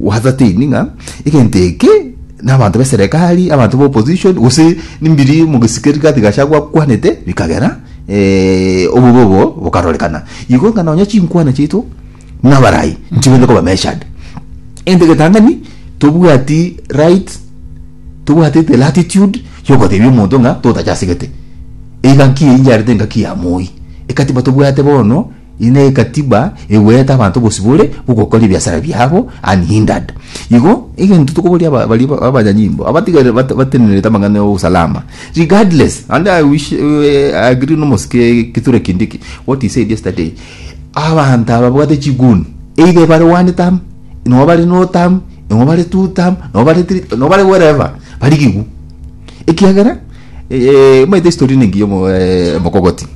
Gwasateni ng'a egento eke nabanto b'eserekari, abanto b'opposition, gose nimbiri mogesikeri gati Gachagua akwanete, bikagera eh, obobe obo bokarorekana. Igo ng'a nonya chinkwana chiaito nabarai nchigwenerete koba measured. Egento egetang'ani tobwati right, tobwatete latitude yogotebia omonto ng'a totachasegete. Eiga nki eyio yarete engaki ya moi. Ekatiba tobwate bono. Inde egatiba egoete abanto obosibore bw'ogokora ebiasara biabo unhindered. Igo egento tokoboria aba- baria ba- abanyanyimbo abatigarire bate- batenenerete amang'ana ya obosalama regardless and I wish eh, I agree nomosike kithure kindiki what he said yesterday abanto aba babwate chiguni either bare one term nabo bare no term nabo bare two term nabo bare three nabo bare wherever bari gigu ekiagera eh, omanyete historia ere engiya omo- eh, omokogoti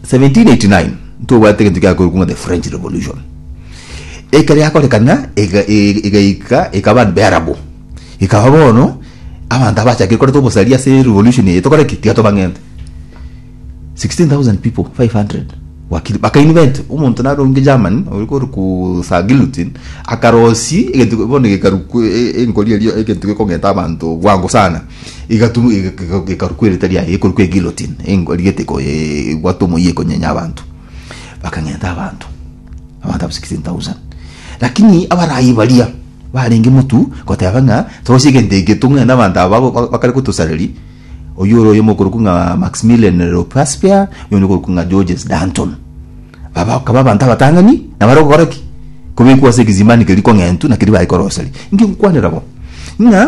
1789 ntobwate egento kiakoirwe ng'a the French Revolution. Ekero yakorekana ega- e- egaika ekaba abanto b'earabu, ekaba bono abanto abachakire koreta obosari ase revolution eye tokore ki? Tiga tobang'ente. 16,000 people, 500 wakire baka invent omonto narenge Germany oria korokwa Sir Gilton akarosia egento bono gekarukwa e- e- enkori eria egento gekong'enta abanto bwango sana. Igatu- ig- ig- ikarukwa erita riaye ekorukwa egilotin rigete gwata omoyia ekonyenya abanto bakang'enta abanto abanto aba 16000 lakini abarayi baria barenge motu goteba ng'a tose egento eke tong'e nabanto aba ba- ba- bakare gotosareri oyio ore oyomo okorokwa ng'a maximilian ropaspia oyonde okorokwa ng'a georges danton aba bakaba abanto abatang'ani nabare gokora ki kobekwa ase ekizimani keria kong'entu nakeri bare koroseri inki ngokwanera bo ng'a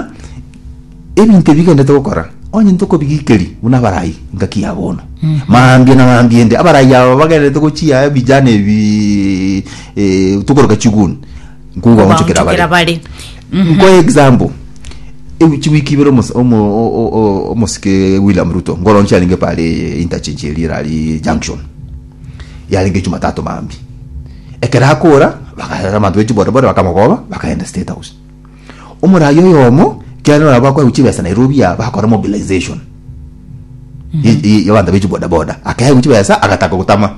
Ebinto ebi igenderete gokora, onye ntokobigikeria buna abarai, engaki yabo bono. Mambia na mambia ende, abarai aba bagenderete gochia ebijana ebi eh, tokoroka chiguni, nkobaonchokera Obaonchokera bare. bare. Nkoe example, ewi- chiwiki ibere omos- omo- o- o- o- omosike William Ruto ngoronche arenge pare interchange eria erari junction, yarenge Jumatatu mambia. Ekero akora, baka- abanto be chibodaboda bakamogoba, bakaenda State House. Omoraai oyomo ekiagera nabo akoegwa chibesa Nairobi aa bakora mobilization ye- ye- y'abanto be chibodaboda akaegwa chibesa agataka gotama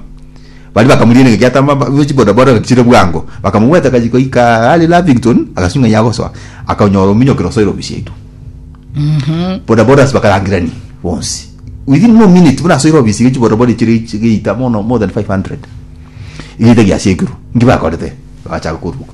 baria bakamorigia naki atama ba- be chibodaboda bagachire bwango bakamogweta akachi goika are Lavington agasuka ng'a yagosoa akanyora ominyokire osoire ofisi yaito bodabodas bakarangerania bonsi within no minute buna asoire ofisi ya chibodaboda echire chigeita bono more than 500 egeita giasiekirwe nki bakorete bagachaka koruboka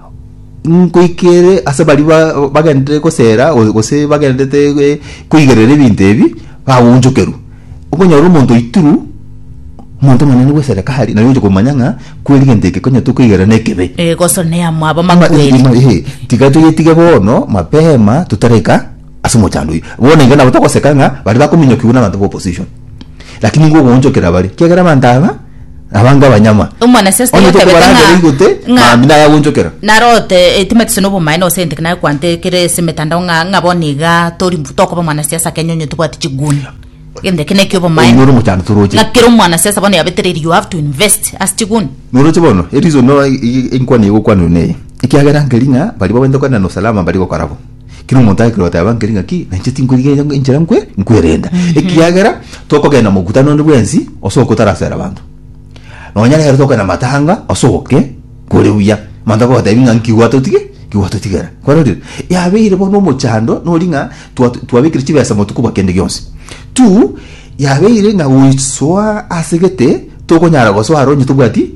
Nkoikere ase baria ba- bagenderete gosera go- gose bagenderete eh, koigerera ebinto ebi bagoonchokerwa okonyora omonto oitirwe omonto omonene gwesera kare naye oche komanya ng'a kweri gento eke konya tokoigera nekebe Eh, gosonea mwabo Ama- makweri ima- ehe, tiga toyetige bono mapema totareka ase omochando oyio bono iga nabo togoseka ng'a baria bakominyokigwa na abanto ba opposition lakini nigo ogoonchokera bare kiagera abanto aba Abange abanyama. Omwanasiasi Onye tayotebete ng'a- tokobarangera igote, ng'a- mambia nagagonchokera. narote etima etise nobomae nose enteke naye kwante ekere ase emetandao ng'a ng'a bono iga tori tokoba omwanasiasa kenya onye tobwati chiguni egento eke nekia obomae Oyio noro omochando toroche. ng'a kera omwanasiasa bono yabetereiri you have to invest ase chiguni Noroche bono, erizon no i- i- inkwana igokwanwa neye. Ekiagera nkeri ng'a baria babwenerete kogenda na usalama mbari gokora bo. Kera omonto agekire goteba nkeri ng'aki, na inche tinkwerigereria nk- enchera nkwe nkwerenda, ekiagera tokogenda mokutano onde bwensi ase oka otarasera abanto. Nonya nere tokogenda matanga ase oke kore buya, manto akogotebi ng'a nki gwatotige ki gwatotigera. Kwarorire? Yabeire bono omochando nori ng'a twa twabekire chibesa motuko bwa kende gionsi. Tu, yabeire ng'a goisoa ase gete tokonyara gosoa aro onye tobwati.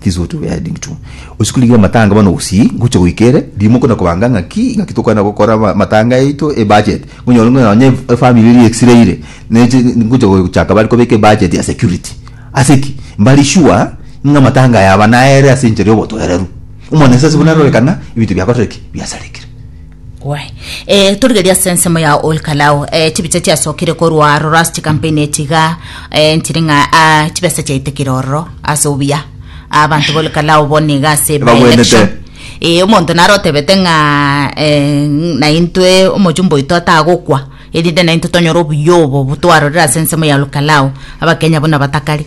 This is what we are heading to. Gose korigia amatanga bono gusii ngocha goika ere rimo kona kobanga ng'aki ng'aki tokwana gokora ama- amatanga yaito e budget. Ngonyore ng'a nonya ef- efamily eria exiraire neche ngocha gochaka bare kobeka e budget ya security. Ase ki? Mbari sure ng'a amatanga aya aba naere ase enchera ya obotoereru. Omwana Nyasaye ase buna arore kana ebinto biakorire ki? Biasarekire. Gwae. Eh, torigeria ase ensemo ya Olkalao. Eh, chibicha chiasokire korwa Rorasti campaign etiga. Eh, ntiri ng'a ah, chibesa chiaitekire ororo ase obuya. Abanto b'Olkalao bono iga ase by Babwenete. election. Eh, omonto naro otebete ng'a eh, naintwe omochumba oito atagokwa erinde naintwe tonyore obuya obo botwarorire ase ensemo ya Olkalao. Abakenya buna batakari.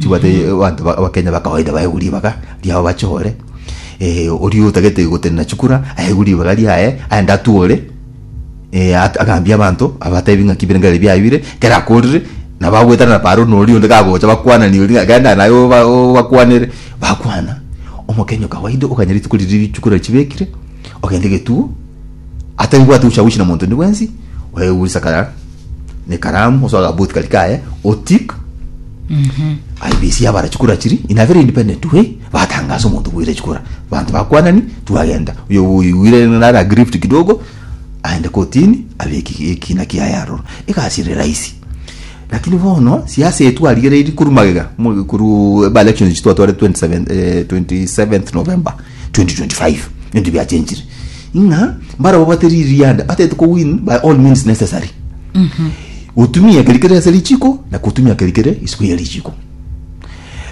Chibwate abanto ba- abakenya bakawaida baegwe ribaga riabo bachore eh, oria otagete gotenena chikura aegwe ribaga riaye aende atwore eh, at- agambie abanto abatebi ng'aki birengeri biaye bire ekero akorire nabo agoetana paro na oria onde kagocha bakwanani oria ng'a genda naye oba- obakwanere bakwana omokenya okawaida okanya rituko riria chikura chibekire ogende getuo. Ataribwati gochia-gochia na monto onde bwensi, oegurisa kara nekaramu, osoe agabuti karia kaye, otik aibisia abara chikura chiri in a very independent way batangasa omonto bwire chikura banto bakwanani twagenda oyo oigwire nare aggrieved kidogo aende kotini abe eki- ekina kiaye aroro egasi ere rahisi lakini bono siasa etu arigereiri korwa magega mo- korwa aba elections echi twatwarete 27 eh, 27th November 2025 ebinto biachenchire ng'a mbarabwo bate ririanda batete ko win by all means necessary otumia ekeri kere ase richiko na kotumia ekeri kere isiko ya richiko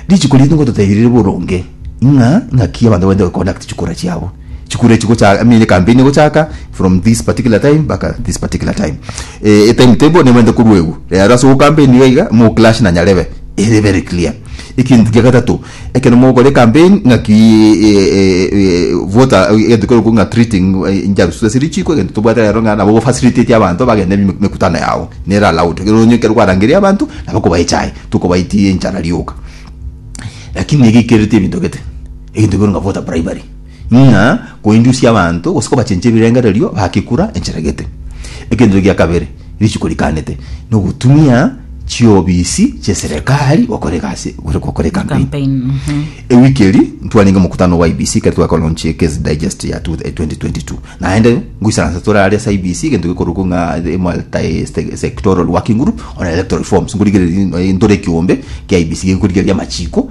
richiko ritu ngototeirire boronge ng'a ng'aki abanto baende baconduct chikura chiabo chikura echi gocha I mean campaign egochaka from this particular time mpaka this particular time eh, e time table nebaende korwa egu rero ase ogocampaign iga iga moclash na nyarebe ere very clear ekinto kia gatato Ekero mogokora ecampaign ng'aki voter egento kekorokwa ng'a treating njarusu ase richiko egento tobwate rero ng'a nabo gofacilitate abanto bagende emekutano yao nere allowed egere onye ekero kwarangeria abanto nabo okobaha echae tokobaetia enchara rioka lakini nigo ekereti ebinto gete egento kekorokwa ng'a voter bribery. Ng'a koindusia abanto gose kobachenchia ebirengererio bagekura enchera gete. Egenchero gia kabere rituko rikanete nogotumia chiobisi chi'eserekari gokora egasi gose gokora ekampeni. Ewiki eri ntwarenge omokutano bwa IEBC ekero twakolaunchia eCase Digest ya 2022. Naende ngoisaransa tore aria ase IEBC egento gekorokwa ng'a the Multi-Sectoral Working Group on Electoral Reforms, nkorigereria noe ntore ekiombe kia IEBC gekorigereria amachiko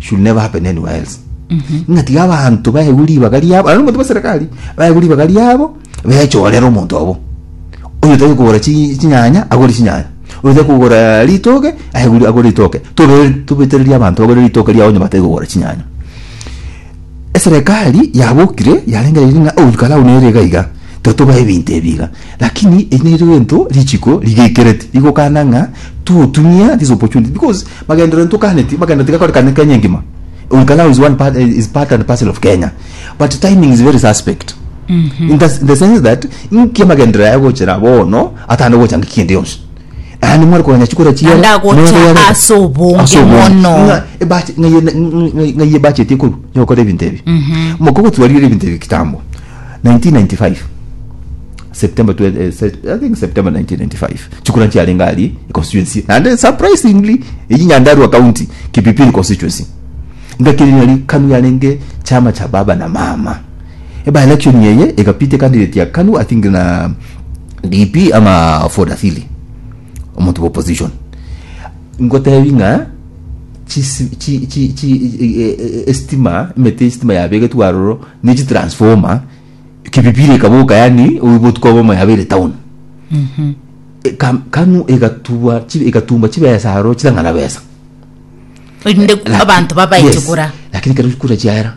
should never happen anywhere else ng'a tiga abanto baegwe ribaga riabo aria nomonto bwa serikali baegwe ribaga riabo bechorere omonto obo oyo otari kogora chi- chinyanya agore chinyanya oyo otari kogora ritoke aegwe agore ritoke Tobe- tobetererie abanto bagore ritoke riabo onye batari kogora chinyanya Eserekari yabokire yarengereiri ng'a ogoikara oo nere iga iga, totoba ebinto ebi iga. Lakini eri nerio gento richiko rigekereti rigokana ng'a totumia this opportunity because magenderero ntokaneti magenderero tigakorekane Kenya engima. Ogoikara oo is one part, is part and parcel of Kenya but timing is very suspect in the, in the sense that inki amagenderero aya agochera bono atano gocha ng'eki kende yonsi. Naende more koranya chikura chiere. Naende agocha ase obonge mono. Ng'ai ebacheti ekorwa yokora ebinto ebi. Mhm. Moka gotwarire ebinto ebi kitambo. 1995. September eh, I think September 1995. Chikura chiarenge ari constituency. Naende surprisingly eyi Nyandarua County Kipipiri constituency. Ngakiri nari kanu yarenge chama cha baba na mama. Eba election yeye egapite candidate ya kanu I think na DP ama Ford Asili omonto bwa opposition ngotebi ng'a chisi- chi- chi- chi- e- e- e- estima emete estima yabegetwe aroro ne chitransformer kipipiri ekaboka yani oibotuka obomo yabeire town E- kam- kanu egatubwa chi- egatumba chibesa aroro chitang'ana besa inde Laki- abanto babaeche Yes, kura lakini kero kura chiaera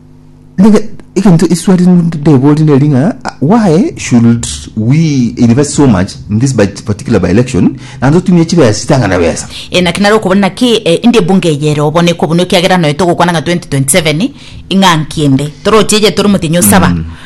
Nige- egento eswali ndebori neri ng'a ah, why should we invest so much in this by- particular by election naende otumie chibesa chitang'ana besa Eh, naki nare okobona naki eh, inde ebunge eye ere obo nekobunwa ekiagera noe togokwana ng'a 2027 ing'a nki ende toroche eye tore omotenyi osaba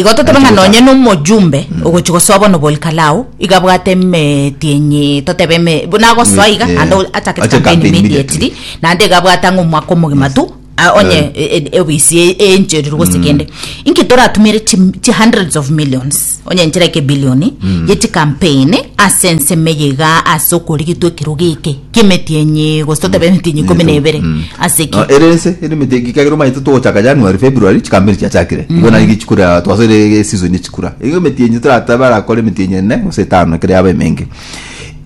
Igo totebe ng'a nonye nomojumbe ogochia gosoa bono Bolkalao igo abwate emeti enye, totebe eme, buna agosoa iga naende o- achake Ache campaign campaign immediately. immediately, naende iga abwate ang'e omwaka omogima tu a- onye e- e- ofisi e- enchererwe gose kende. Inki toratumere chi- chi hundreds of millions? Onye enchera ekebilioni ye chikampeni ase ensemo eye iga ase okorigitwa ekerogo eke ki'emetienyi gose totabe emetienyi ikomi na ebere ase ki Ah, ere ense ere emete egika ekero omanyete togochaka january february chikampeni chiachakire igo nari gichikura twasoire esizoni echikura igo emetienyi toratabe arakore emetienyi ene gose etano ekero yaba emenge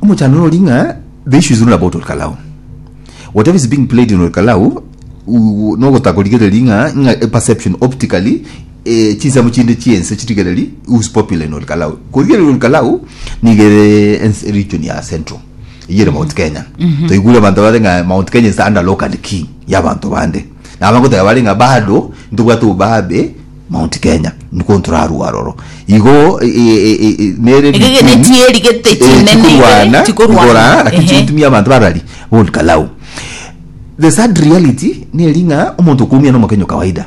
omochando nori ng'a the issue is not about olkalau whatever is being played in olkalau u- nogotaka korigereria ng'a ng'a a perception optically e, chinsemo chinde chi'ense chirigereri whose popular in Olkalau. Korigereria Olkalau niga ere ense region ya Central. Eyio ere Mount Kenya. Toigure abanto bare ng'a Mount Kenya is under lock and key ya abanto bande. Na abagoteba bare ng'a bado ntobwate obobabe Mount Kenya niko ntorarwa aroro. Igo e, e, e, e, nere Iga iga region- netieri gete Eh, chinene chikorwana igere, chikorwana. igora lakini Ehe. chigotumia abanto barari Olkalau. The sad reality neri ng'a omonto okoumia nomokenya o kawaida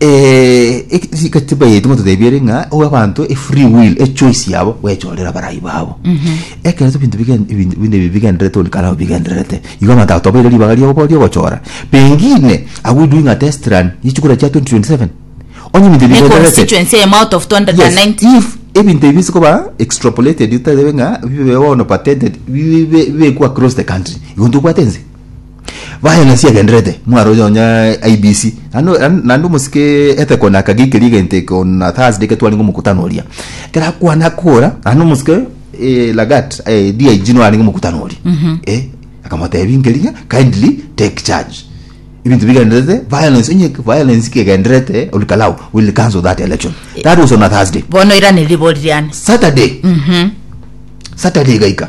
Eh, eki- chika chibayeti ngototebia ere ng'a owe abanto e free will e choice yabo gwechorera abarai babo ekero ebinto bigen- ebinto ebinto ebi bigendererete onde kare nabo bigendererete igo abanto agotobaire ribaga riogo riogochora pengine are we doing a test run yechikura chia 2027 onye ebinto ebi Ne bigendererete constituency eye out of 290. Yes, if ebinto ebi bise koba extrapolated oterebe ng'a bibe bono patented bibe bibe- bibekwa across the country igo ntobwate ense Baye ng'asi agendererete mwaroche nonya IBC naende naende naende omosike ethekone akagikeria egento eke on na Thursday ekero twarenge omokutano oria ekero akwana akora naende omosike eh, Lagat eh, DIG nore arenge omokutano oria eh, akamotebia nkerigia kindly take charge ebinto bigendererete violence onye violence kegendererete olikalau will cancel that election that was on a Thursday bono irane ribori riane Saturday Saturday gaika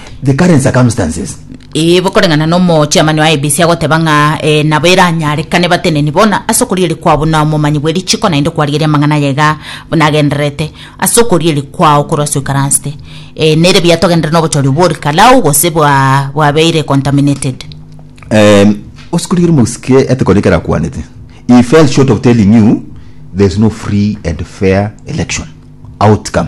the current circumstances. Ee, bokoreng'ana n'omochiamanio IEBC agoteba ng'a eh, nabo eranyarekane bateneni bono ase okorieria kwao buna omomanyi bwe richiko naende okwarigeria amang'ana aya iga buna agendererete ase okorieria kwao korwa ase oikaransete eh, nere biato agenderere n'obochori obwo ore kalau gose bwa bwabeire contaminated Um, osikorigerie mosike etekone ekero akwanete he fell short of telling you there's no free and fair election outcome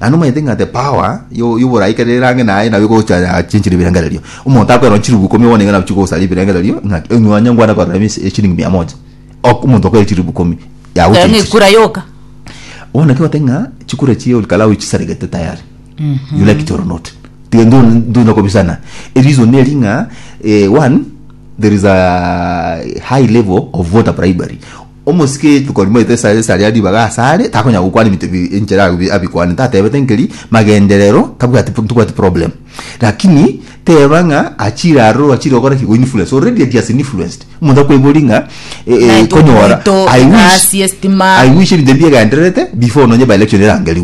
Naende nomanyete ng'a the power yo- y'oborai kere erange naye nabo egocha yachinchire ebirengererio. Omonto akoerora chiribu ikomi bono iga nabo chigosaria ebirengererio ng'a onye onye ngwane korora eme eshilingi mia moja. Ok- omonto okoeire chiribu ikomi Taiyo ng'a yagochinchire. ekura yoka Bono naki ogoteba ng'a chikura echi ore Kalau chisaregete tayari. You like it or not. Tiga ntwe ntwende kobisana. Ereason eri ng'a eh, one, there is a high level of voter bribery. Omosike rituko rimaete esare esaria ribaga asare takonyara gokwana ebinto bi enchera agobie abikwane tatebete nkeri magenderero tabwati pu ntobwati problem lakini teba ng'a achire aroro achire gokora ki goinfluence already edi has influenced omonto akoibori ng'a eh eh Naitwe konyora omoito I wish egasi estima I wish ebinto ebi biegendererete before nonye by election erangerigwe.